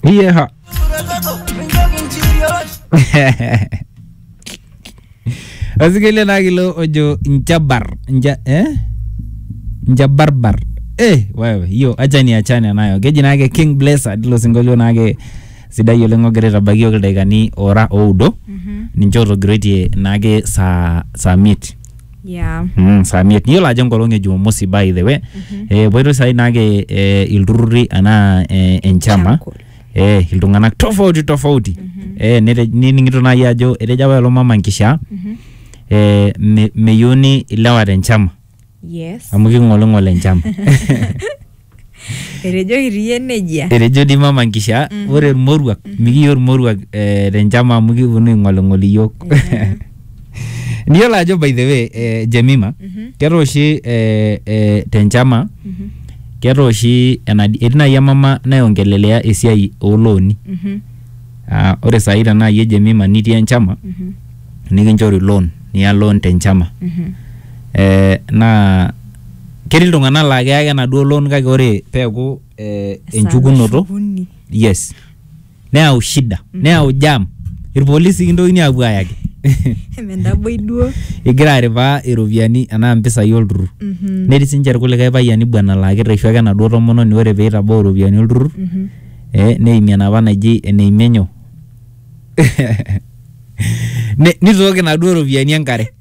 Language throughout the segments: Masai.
Vieja. Asikelia naa kilo ojo njabar nja eh? njabarbar eh, wewe hiyo acha ni achane nayo keji naake king blesser tilo sinkolio naake sidai oleng ogira aitabaiki yoki ildaikani ora oudo ninche otogiroitie naake saa saa miet Yeah. Mm, saa miet niyiolo ajo enkolong e jumamosi by the way eh, epoitoi saai naake eh, ilturrurri anaa eh, enchama Chakul. eh, iltung'anak tofauti tofauti eh, nete- nining'ito naaji ajo etejo apa lelo mama nkishaa eh, me- meyieuni ilewa te nchama Yes. amu king'oling'ol enchama Etejoki ti iyie nejia. Etejo dii mama nkishaa ore irmoruak mikiya ormoruak eh, tenchama amu kiponu aing'oling'ol iyiook. Niyiolo ajo by the way eh, Jemima ketaa oshi eh, eh, tenchama ketaa oshi enadi etii naaji emama naiongelelea esiai oolooni. Ah, ore saai tenaa iyie Jemima nitii enchama nikinchori loan niya loan tenchama. Eh, naa ketii iltung'anak laa keya ake enaduo loan kake ore peeku eh, Esaa enchukunoto nashukuni. yes neyau shida neyau jam irpolisi kintokini aapuo ayaki Emendaboi duo. igira aripaa iropiyiani anaa mpisai olturrur Mhm. netii sinche irkulikae payiani bwana laa kirreshu ake enaduo tomononi ore peitabau iropiyiani olturrur Mhm. eh, neimie enapa naji eneimie nyoo Ne- nitooki inaduo ropiyiani enkare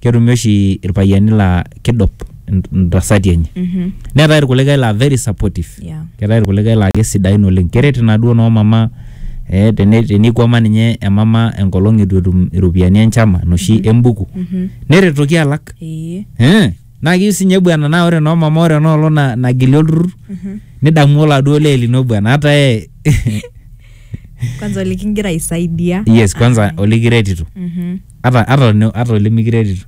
ketumi oshi irpayiani laa kidup in- intasati enye Mhm. neetae irkulikae laa very supportive Yeah. keetae irkulikae laa kesidain oleng keret inaduo noo mama eh, tene- tenikwama ninye emama enkolong itu etum iropiyiani enchama noshi embuku Mhm. neretoki alak Ee. Eh, naa kiu sinye bwana naa ore noo mama ore enoolong na- nagili olturrur Mhm. nidamu oladuo lee lino bwana hata yeye Kwanza likingira aisaidia. yes kwanza olikiretito Mhm. ata ata olne- ata olimikiretito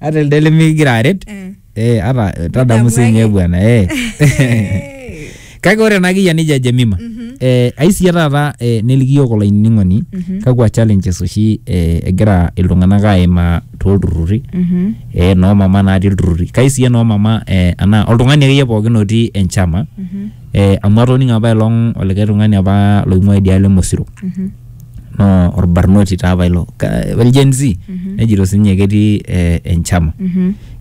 ata elde limikigira aret Eh. eh, ata eh, tadamu Nidamu sinye ake. bwana eh. Eh. kake ore ena kiyia nija Jemima Mhm. eh, aisiya taata eh, neliki yiok olainining'oni Mhm. kakwa challenges oshi eh, egira iltung'anak aimaa toolturruri Mhm. eh, noomama natii ilturruri kaisiya noomama eh, anaa oltung'ani akeyie pookin otii enchama Mhm. eh, amu atoning'o apa elong olikae tung'ani apa loing'ua idialo emosiro no orbarnoti taa apa ilo Ka- el Gen Z nejito sinye ketii eh, enchama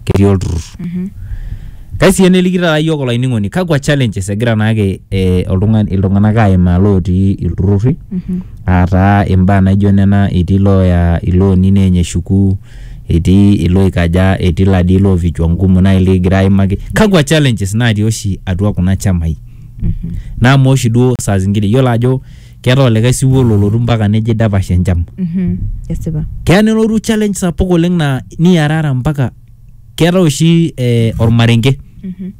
ketii olturrur kai sii eneliki taata yiok olainining'oni kakwa challenges egira naake eh, oltung'ani iltung'anak aimaa lootii ilturrurri aataa imbaa naijo nena etii looya ilooni neeny eshuku etii ilooikaja, etii ila dii loo vichwa ngumu nai likigira aimaki. Kakwa challenges natii oshi atua kuna chamai? Naa amaa oshi duo saa zingine iyiolo ajo keetae olikae siwuo lolotu mpaka nejo eidapash enchama. Mhm. Esipa. Keya nelotu challenge sapuk oleng naa niarara mpaka keetae oshi eh, ormarenge. Mhm.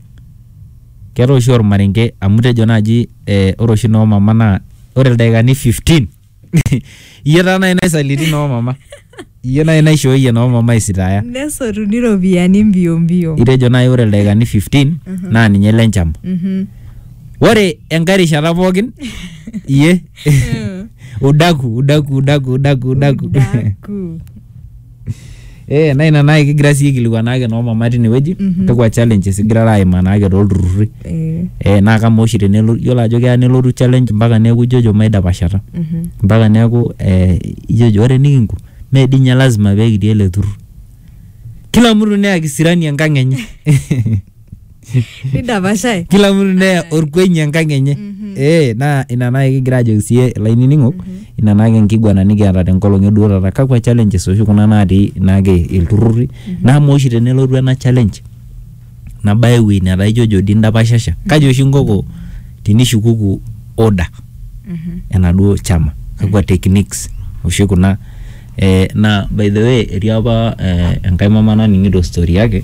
Keetae oshi ormarenge amu itejo naaji eh, ore oshi noo mama naa ore ildaikani 15 iyie taa nai naisaliti noo mama iyie nai naishooyie noo mama isitaya nesotuni iropiyiani mbio mbio itejo nai ore ildaikani 15 naa ninye ile nchama Mhm. ore enkae rishata pookin iyie udaku udaku udaku udaku udaku Udaku. Eh, na ina naai kigira sii aikilikuan naake noo mama tinewueji Mhm. kakwa challenges igirara aimaa naake tolturrurri Eh, eh, naa kamaa oshi tenelo yiolo ajo keya nelotu challenge mpaka neeku ijojo maidapashata mhm. mpaka neeku eh, ijojo ore nikinko mee dii ninye lazima pee kitii ele turrur kila mtu neya kisirani enkang enye nidapashae kila mtu neya orkweny enkang enye eh naa ina naa kigira ajoki siye ilainining'ok ina naake enkiguana nikiata tenkolong eduo taata kakwa challenges oshi kuna natii naake ilturrurri naa amaa oshi tenelotu ena challenge nabaya ewuei netaa ijojo dii indapashasha kaji oshi inkoko tinishukuku order enaduo chama kakwa techniques oshi kuna Eh, na by the way etii apa eh, enkae mama naning'ito story yake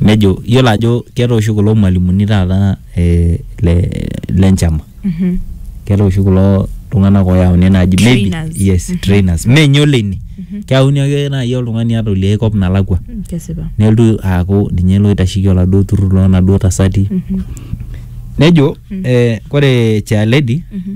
nejo yiolo ajo keeta oshi kulo mwalimuni taata eh, le, le nchama Mhm. keeta oshi kulo tung'anak oyauni naaji maybe- Trainers. yes trainers menye oleini keyauni ake naaji oltung'ani ata oliai kop nalakua Mm, kesipa nelotu aaku ninye loitasheki oladuo turrur lonaduo tasati Mhm. nejo eh, kore chair lady Mhm.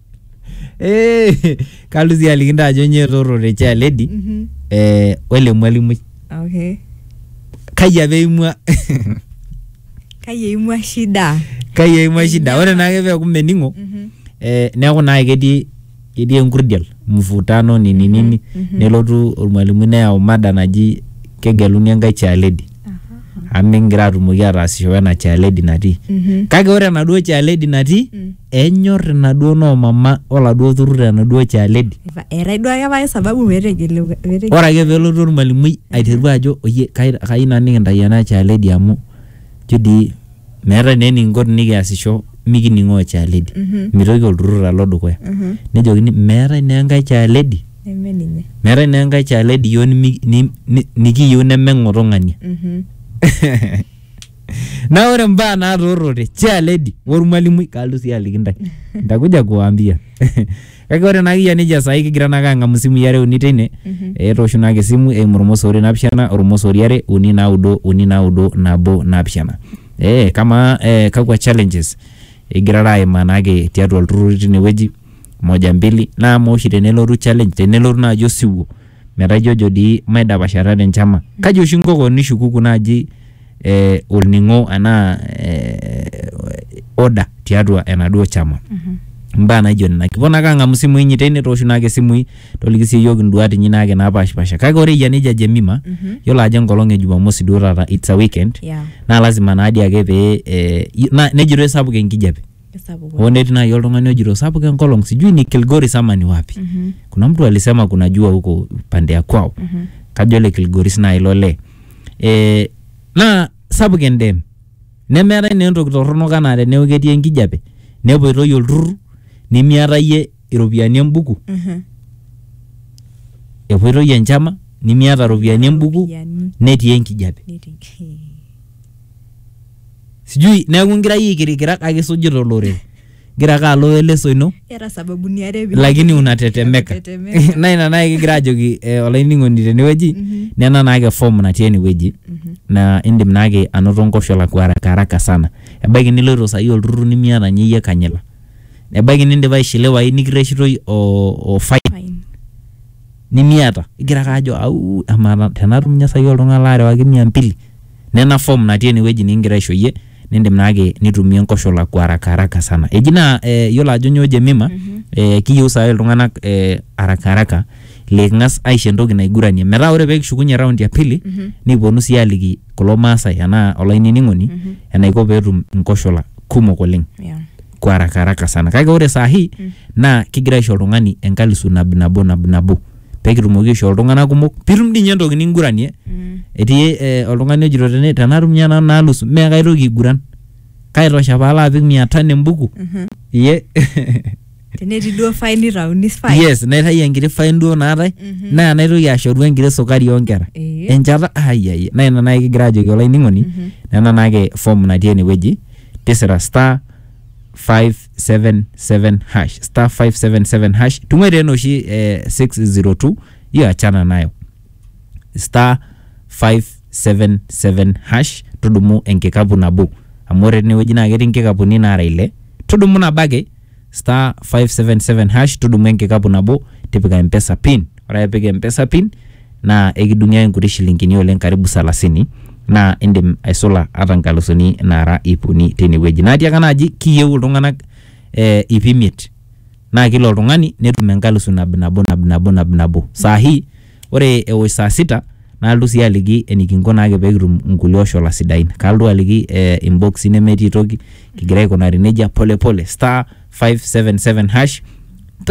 Eh, kalotu sii aliki ntae ajo nyoo etorrore chair lady Mhm. eh, wele mwalimui Okay. kai apa eimua Kai eimua shida? kai eimua shida ore naake peeku mening'o Mhm. eh, neeku naake ketii ketii enkurdial mvutano nini nini mhm. nelotu ormwalimui neyau mada naji kegeluni enkae chair lady amu mikingira atumoki ataasisho wena chair lady natii Mhm. kake ore enaduo chair lady natii Mm. Enyor inaduo noo mama oladuo turrur enaduo chaaledi. Eetae duo ake pae sababu petegelu petegelu. Ore ake pelotu ormalimui aiteru ajo oyie kai kayieu nanu nikintai ena chaaledi amu ijo dii meetae naa enikinko tenikiasisho mikining'oo chaaledi. Mitoki olturrur alo dukuya. Nejokini meetae naa enkae chaaledi Neme ninye. meetae naa enkae chaaledi iyiok nimi ni ni nikiyieu neme ng'oto ng'ania. na ore mbaa naatoorote chia lady ormwalimui kaaltu sii aliki ntae ntakuja kuwaambia kake ore naa kiyia nejia saai kigira naake ang'amu isimui are uni teine etoosho naake esimu eimu ormosori napishana ormosori are uni naudo uni naudo nabo napishana ee kamaa ee kakwa challenges igirara aimaa naake tiatua ilturruri tinewueji moja mbili naa amaa oshi tenelotu challenge tenelotu naaji osiwuo metaa ijojo dii maidapashata te nchama. Kaji oshi inko kewon nishukuku naaji eh, olning'o anaa eh, order tiatua enaduo chama. Imbaa naijo nena. Kiponu ake ang'amu isimui inyi teine tooshu naake isimui toliki sii iyiok induat inyi naake napaashipasha. Kake ore eyia nejia Jemima, yiolo ajo enkolong e Jumamosi duo taata, it's a weekend, Yeah. naa lazima naa dii ake pee eh, na- nejitoi sapuk enkijape. Kesapuk Hoo netii naaji oltung'ani ojito sapuk enkolong sijui ni Kilgoris ama ni wapi. Mhm. Kuna mtu alisema kuna jua huko pande ya kwao. Mhm. Kajo le Kilgoris naaji ilo lee. Eh, naa sapuk endem. Nemeetae naa entoki torronok anaa teneeku ketii enkijape nepuoitoi olturrur nimiata iyie iropiyiani embuku, Mhm. epuoitoi enchama nimiata iropiyiani embuku Iropiyiani. netii enkijape. Netii. sijui neeku ngira yie aikirikira kake isujita olorere ngira ake alo eleso ino Era sababuni are pee- lakini unatetemeka Tetemeka. na ina naye kigira ajoki eh, olainining'oni tenewueji nena naake form natii enewueji na indim naake anoto nkoshola kwa haraka haraka sana ebaiki niloito sahi olturrur nimiata nye iyie kanyila ebaiki nindipa aishiliwayu nikirreshitoi o, o fine Fine. nimiata igira ake ajo au amaa ta- tenatum nye sahi oltung'ani laarewaki mia mbili Nena form natii ene wueji nikigira aisho iyie nindim naake nitumie nkoshola kwa haraka haraka sana. Eji naa eh, iyiolo ajo nyoo Jemima eh, kiyieu saai iltung'anak eh, haraka haraka liking'as aisho entoki naiguranie metaa ore pee kishukunye round ya pili nikiponu sii aliki kulo maasai enaa olainining'oni enaiko pee etum nkoshola kumok oleng Yeah. kwa haraka haraka sana. Kake ore saa hii naa kigira aisho oltung'ani enkalisu nab nabo nab nabo. pekitumoki aishoo iltung'anak kumok pitum dii ninye entoki ninguranie Mm. etii eh, oltung'ani ojito tene tenatum ninye nanu naalus mee kaitoki aiguran kaitosha paalo apik mia tano embuku Mhm. iye tenetii duo fai nitauni fai yes naitayu enkiti fine duo naatae Mhm. naa naitoki ashoru enkiti sukari oonkera Eh. enchata ayayie naa ina naai kigira ajoki olainining'oni Mhm. nena naake form natii enewueji tisira star 5 577 hash star 577 hash tung'oe tena oshi eh, 602 hiyo achana nayo star 577 hash tudumu enkikapu nabo amu ore tenewueji naa ketii nkikapuni naara ile tudumu nabo ake star 577 hash tudumu enkikapu nabo tipika mpesa pin ore ake pik mpesa pin naa ekidung'i ake nkuti shilingini oleng karibu salasini naa indim aisula ata nkalusuni naara iip uni teine wueji. Naa tiaaka ena aji kiyieu iltung'anak eh iip imiet naa kila oltung'ani netum enkalusu nabinabo nabinabo nabinabo. Saa hii ore ewosh saa sita nalotu sii aliki enikinko naake peekitum nkulie oshola sidain. Kalotu aliki eh imboksi nemetii toki kigira aikunari neija pole pole star five seven seven hash.